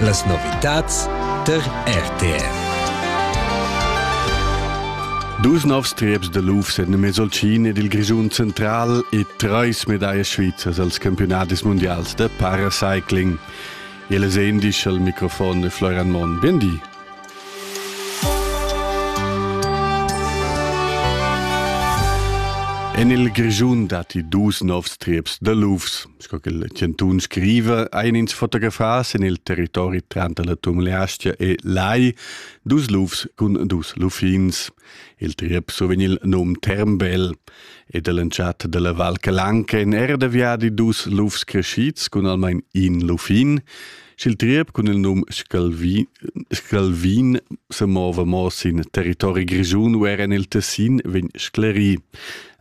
Las novitads tar RTR. Dus novs trieps da luf sen in Mesolcin ed il Grischun central e treis medallas svizzers als campionatis mundials da paracycling. Ele sendisch al microfon e Florian Monn. Bien di. En il Grischun datti dus novs trieps da lufs. sco che il chantun scriva, ein ins fotografas en il territori tranter la Tumleastia e Lai, dus lufs cun dus luffins. Il triep survegn il num Termbel ed all'entschatta della Val Calanca en erda viadi dus lufs crescids cun almain in luffin. Sch'il triep cun il num Scalvin, Scalvin semova mo sin territori grischun u era en il Tessin, vegn sclerì.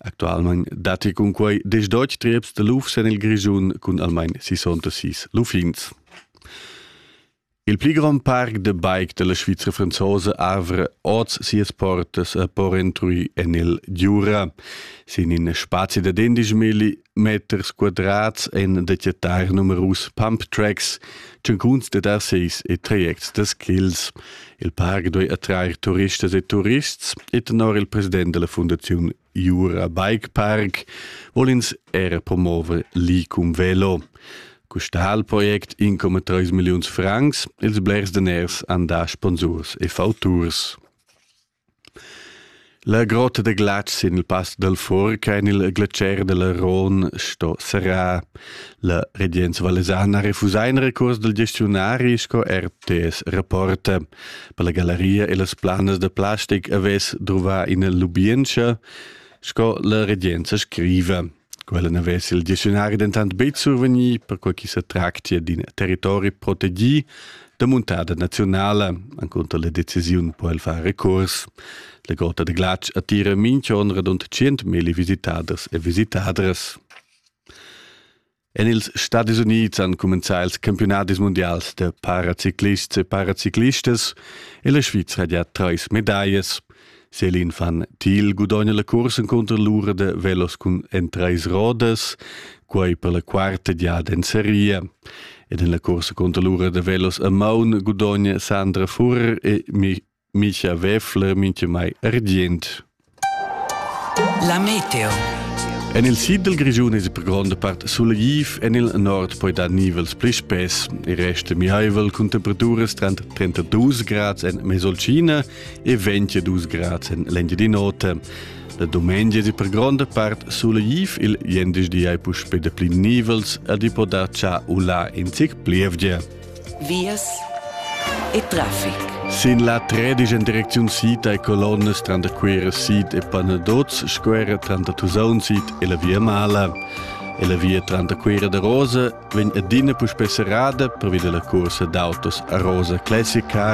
Actualmain datti cunquai diesch deutsch trieps da lufs en il Grischun cun almain 66 luffins. Il pli grond parc de bike della Svizra franzosa avre oz sias portas a Porentruy en il Giura. Sin in spazi da 10 migli meters quadrats en detectar numerus pump tracks, tschuncuns de dasseis e trajects de skills. Il parc doi attrair turistas e turists e tenor il president della Fundazione Jura Bike Park vol ins er promover l'icum velo. Custal project income 3 milliuns francs, ils blers daners an da sponsurs e fauturs. La grotta da glatsch sin il pass dal Furg en il glacier da l'Aron sto serrar. La regenza valesana refusa in recurs dal gestiunari sco RTS rapporta. Per la gallaria e las planas da plastic avess druvà ina lubientscha, sco la regenza scriva. Quella n'avess il dicziunari dentant betg survegnì, perquai ch'i sa tractia d'in territori protegì da muntada naziunala. Encunter la decisiun po el far recurs. La Gota de Glatsch attira minch'on radund 100.000 visitaders e visitadras. En ils Stadis Unids han cumenzà ils campionadis mundials da paraciclists e paraciclistas e la Svizra ha già trais medaglias. Selin van Thiel gudogna la cursa cunter l'ura da velos cun en treis rodas, quei per la quarta giada en seria. Ed en la cursa cunter l'ura da velos a maun gudogna Sandra Furr e Micha Weffler mincha mai argient. La meteo. En il sid del Grigiun è per gronda part sulegif, en il nord poi dar nivels pli spess. Il resto mihaivel cun temperaturas tra 32 grads en Mesolcina e 22 grad en l'Engiadin'Ota. La dumengia di per gronda part sulegiv il jendischdi ai puspè de pli nivels ed i poda cha ula in zic plievgia. Vias e traffic. Sin la tredigen direcziun sid ai colonnas tra da Quera sid e Panadoz, squera tra da Tusaun sid e la via Mala. E la via tra da Quera da Rosa vegn adina puspè serrada per via della corsa d'autos a Rosa Classic Car